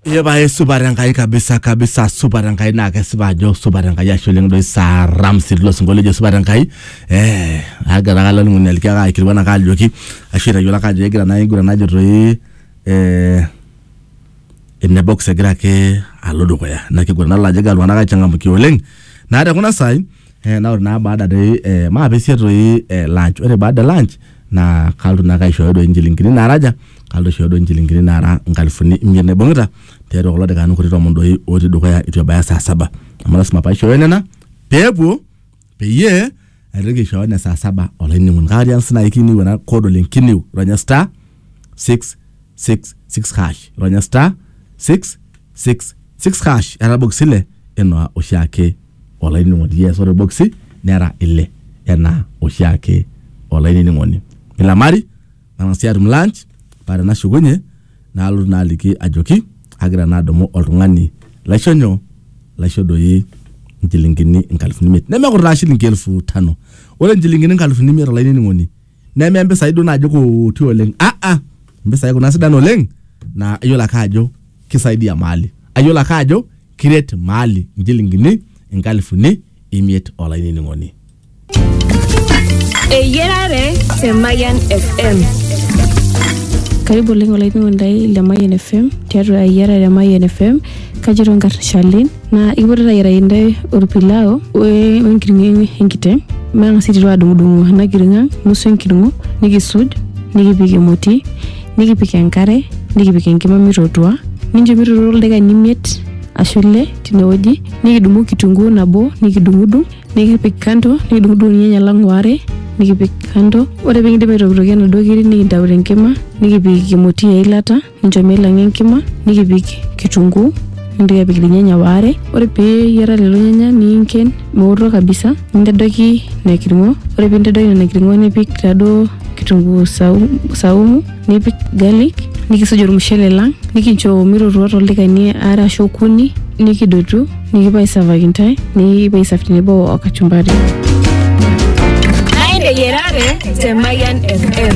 Ee pae supat Enkai kabisa kabisa supat Enkai naa kesipa ajo supat Enkai ashe oleng doi saa Ramsi tilo sinkolio ojo supat Enkai eh agira ake olainining'oni aliki ake aikilikuan ake ajoki ashu aitayiolo ake ajo egira naa aiguran najo toi eh ene box egira ake alo dukuya ina kiguran nadol ajo egira iltung'anak aichangamkia oleng naa tekuna saai Eh, na ore naa baada doi eh, maapesie toi eh, lunch ore baada e lunch naa kalotu naake aishooyo doi inchilingini naaraja kalotu aishooyo doi inchilingini naara inkalifuni imiet naibung'ita tiatua kulo dakikani kuti tomon doi otii dukuya itu ebaya saa saba amu lasima paishooyo nena peepuo peyie aitoki aishooyo ne saa saba olainining'oni kake atiaki sinai kiniu ena code oleng kiniu ronya star 666 hash ronya star 666 hash etabokisi ile enaa oshiake olainining'oni yes ore boksi nera ile enaa oshiake olainining'oni nilamari nang'asi atum lunch paa tenashukunye nalotu naa aliki ajoki agira naa adumu oltung'ani laisho nyoo laisho doi inchilingini inkalifuni imiet nemekurtaa shilingi elfu tano ore inchilingini inkalifuni imiet olainining'oni neme mpisai duo naaji kuti oleng aa mpisai kuna sidan oleng naa iyiolo ake ajo kisaidia maali ayiolo ake ajo kiret maali inchilingini inkalifuni imiet olainining'oni Eyiarare te Mayan FM. Karibu oleng olainining'oni lai le Mayian FM tiatua eyiarare e Mayian FM. Kajito nkarn Shalin naa ikipoito ayiaraki intae orpilau wenkiring'o enkiteng matang'as aiteru adung'udung'u ena kiring'o ang nusu enkiring'o nikisuj nikipik emoti nikipik enkare nikipik enkima mitotua nincho mitotua ildaikani imiet ashu ile tinewueji nikidumu kitunguu nabo nikidung'udung nikipik kando nikidung'udung irnyanya lang waare nikipik kando ore pekindip aitokitokie inaduo kiri nikintau tenkima nikipik emoti eilata. nincho meilang'a enkima nikipik kitunguu nintoki apik irnyanya waare ore pee eyiara lelo nyanya niinken meoto kabisa nintadoiki ina kirng'o ore pee intadoiki nena kirng'o nipik taaduo kitunguu sau- saumu nipik garlic nikisuj ormushele lang nikincho mitootua toldakikani aare ashu okuni nikidotu nikipuo aisavaki intae nikipuo aisav tenebo o kachumbari Naa eyiarare te Mayian FM.